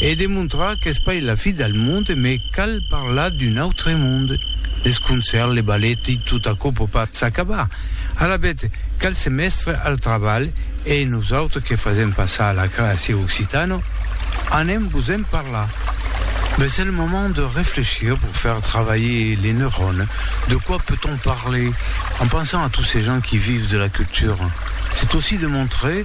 e de montrar qu'es pas la fi del monde me cal parlar d'un autre monde, les concerts, les ballet i tot aquò pòt pas s'acabar. Alavetz cal se mestre al trabalh e nosautres que fasèm passar la creacion occitana anem vos en parlar. Be c'est le moment de réfléchir pour faire travailler les neurones, de quoi peut-on parler en pensant à tous ces gens qui vivent de la culture? C'est aussi de montrer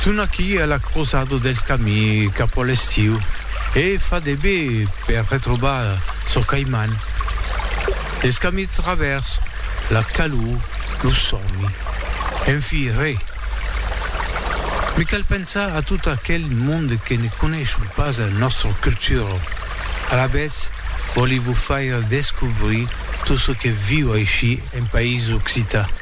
Son aquí a la crosada dels camins cap a l'estiu e fa de be per retrobar çò qu'ai man. Dels camins travèrs, la calor, lo sòmi, enfi re. Me cal pensar a tot aquel monde que ne coneishon pas a nòstra cultura. Alavetz, vòli vos faire descobrir tot çò que viu aicí en país occitan.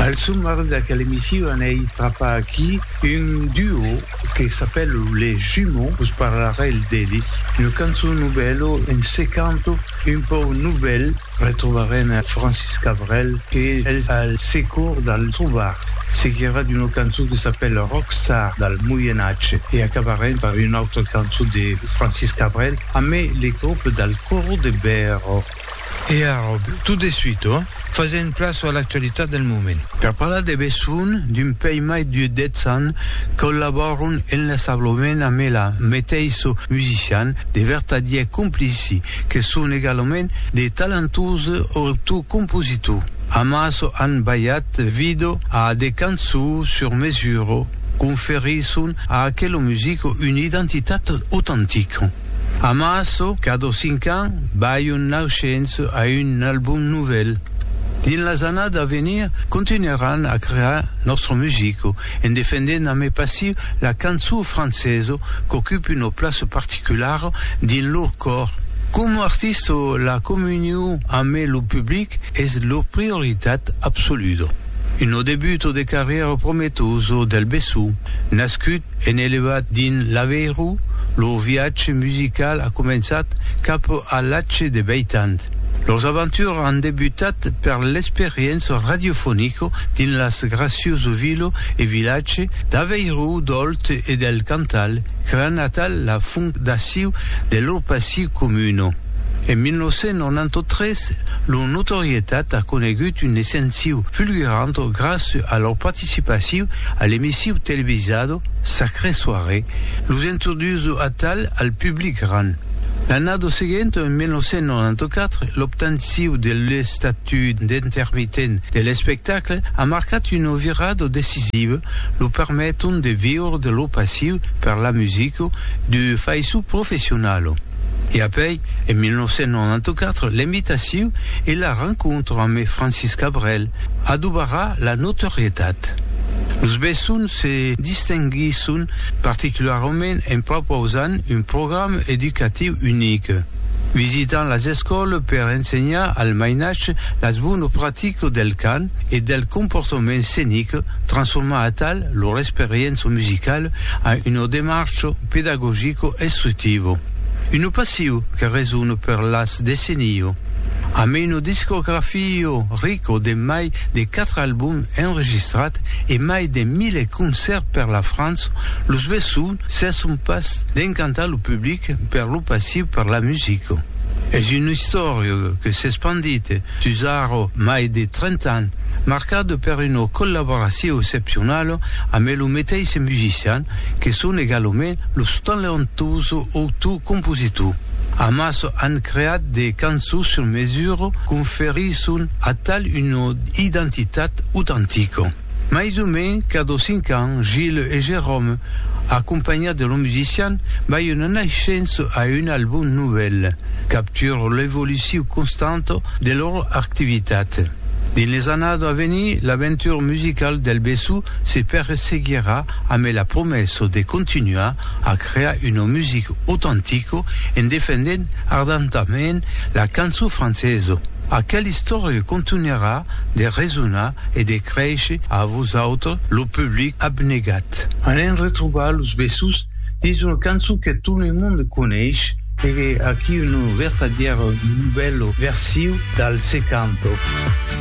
Al somar d'aquel emissiu anèi trapar aquí un duo que s'apèl Les Jumeaux, vos parlarèl d'elis, una cançon novèla, un secanto un pauc novèl, retrobarem Francis Cabrel que es al secor dal trobar, seguirà d'una cançon que s'apèl Rockstar dal Moienatge e acabarem per una autra cançon de Francis Cabrel amé le grop dal Coro de Bèro. E ara, tot de suite, fasèm plaç a l'actualitat del moment. Per parlar de besonh d'un pei mai de 10 ans, collabòron enlaçablament amb ela meteissu musician de vertadièr complici que son egalament de talentose auctors compositors. Amas an balhat vido a de cançons sur mesura, conferisson a aquela musica una identitat autentica. Amasso qu'a dos cinc ans bai un naushens a un album novèl. Dins las annada a venir continuaràn a crear nòstra musica en defendent a mai passiu la cançon francesa qu'ocupe una plaça particulara dins lor còr. Coma artista la comunion a mai lo public es lor prioritat absoluda. Una debuta de carrièra prometosa del Bessó nascut En elevat dins l'Aveiro, lor viatge musical a començat cap a l'atge de veit ans. Lors aventures an debutat per l'experiença radiofonica dins las Gracioso Vila e Vilatge d'Aveiro, d'Òlt e del Cantal, creant natal la fondaciu de lor passi comuna. En 1993, lor notorietat a conegut un escenciu fulgurant gràcia a lor participaciu a l'emissiu televisado Sacrée Soirée, los introduso atal al public ran. L'annada seguenta, en 1994, l'obtanciu de l'estatut d'intermitent de l'espectacle a marcat una virada decisiva, lo permeton de viure de lo passiu per la musica de faiço professionala. E apèi, en 1994, l'imitaciu e la rencontra amé Francis Cabrel, adobarà la notorietat. Los Bessons se distinguisson particularament en propausant un program educatiu unic, visitant las escòles per ensenhar al mainatge las bones practicas del cant e del comportament scenic, transformar atal lor experiença musicala en una demarcha pedagogica instructiva. Un passiu que resona per las decennias. Amb una discografio rico de mai de quatre albums enregistrats e mai de mile concèrts per la França, los Besson cesson pas d'encantar lo public per lo passiu per la musica. Es un istòriu que s'espandit sus ara mai de 30 ans, marcat per una collaboraciu excepcionala amb lo meteisse musician que son egalament lo talentuoso autor-compositor. Amas an creat de cançons sur mesura conferisson a tal una identitat autentica. Mai o men cada cinc ans, Gilles e Jérôme, acompanhats de lor musician, bai una naishença a un album novèl, captura l'evoluciu constanta de lor activitat. Dins les annadas a venir, l'aventura musicala del Bessó se perseguirà amé la promessa de continuar a crear una music autantica en defendent ardentament la cançon francesa. Aquela istòria contunharà de resonar e de créisher a vosautre lo public abnegat. Alèm retrobar los vessos dins una cançon que tot lo monde coneish e aquí una vertadièra novèla versiu dal Se Canto.